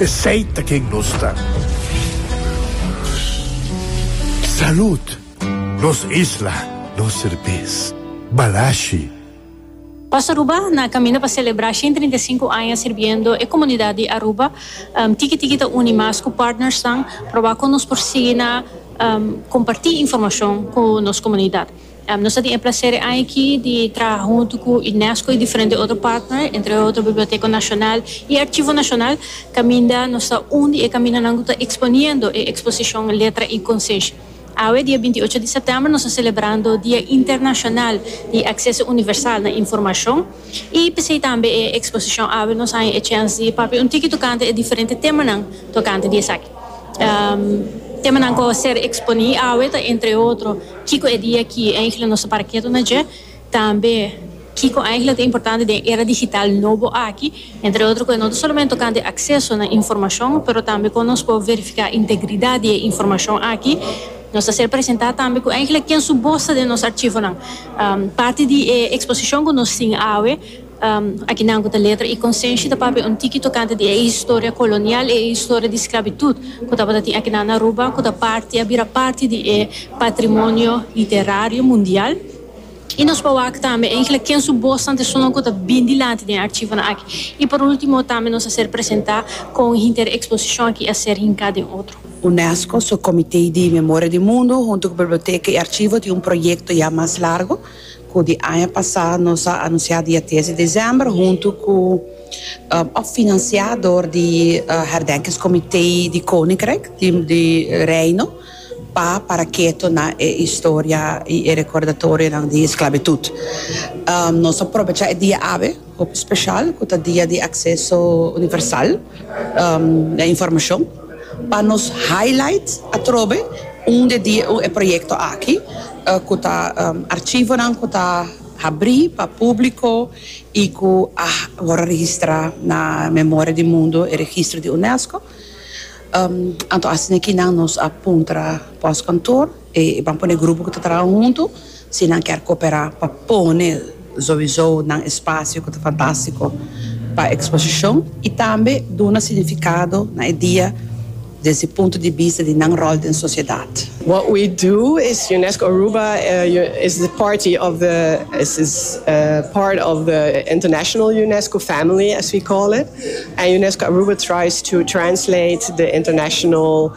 Esey ta ken nos ta. Salud! Nos isla, nos serbes. Balashi. Paz Aruba na caminda pa celebra shen trinta i sinku aña sirbiendo e comunidad di Aruba. Tiki tiki ta uni mas cu partnersnan proba con nos por sigui na comparti informacion cu nos comunidad. Nos a tin e placer e aña aki di traha huntu cu Unesco y diferente otro partner, entre otro Biblioteca Nacional y Archivo Nacional, caminda nos ta un di e caminanan cu ta exponiendo e exposicion Letra y Conciencia. Awe, dia binti ocho di september, nos ta celebrando Dia Internacional di Acceso Universal na Informacion y p'esey tambe e exposicion awe nos haña e chens di papia un tiki tocante e diferente temanan tocante di esaki. Temanan cu a ser exponi awe ta entre otro. Kiko e dia ki eingele nos ta para ketu na dje? Tambe kiko eingele ta importante den e era digital nobo aki? Entre otro ku e no ta solamente tokante akseso na informashon, pero tambe kon nos por verifiká integridat di e informashon aki. Nos ta ser presentá tambe ku eingele ken su bos ta den nos archivonan. Parti di e eksposishon ku nos tin awe. Aki nan ku ta letra i konsenshi ta papia un tiki tokante di e historia kolonial, e historia di sklabitut ku tabata tin aki nan na Aruba ku ta parti, a bira parti di e patrimonio literario mundial. I nos por wak tambe enkele ken su bosnan ta esun ku ta bin dilanti den e archivonan aki. I por ultimo tambe nos a ser presenta kon hinter e eksposishon aki a ser hinka den otro. UNESCO su Komite di Memoria di Mundu huntu ku Biblioteka i Archivo tin un proyekto ya mas largo. Ku di aña pasá nos a anunsiá dia tres di desèmber huntu ku òf finansiá dor di Herdenkingskomité di Koninkryk di Reino pa Paraketo na e historia i e rekordatorionan di esklabitut. Nos a probechá e dia awe. Hopi special cu ta dia di acceso universal na informacion pa nos highlight atrobe unda di e proyecto aki cu ta archivonan cu ta habri pa publico y cu a word registra na memoria di mundo, e registro di UNESCO. Anto asina aki nan nos a puntra pos kantoor. E ban pone grupo ku ta traha huntu si nan kier koperá pa pone zoizó nan espasio ku ta fantástiko pa eksposishon i tambe duna signifikado na e dia desde punto di bista di nan ròl den sosiedat. What we do is Unesco Aruba is the party of the is is part of the international Unesco family as we call it and Unesco Aruba tries to translate the international.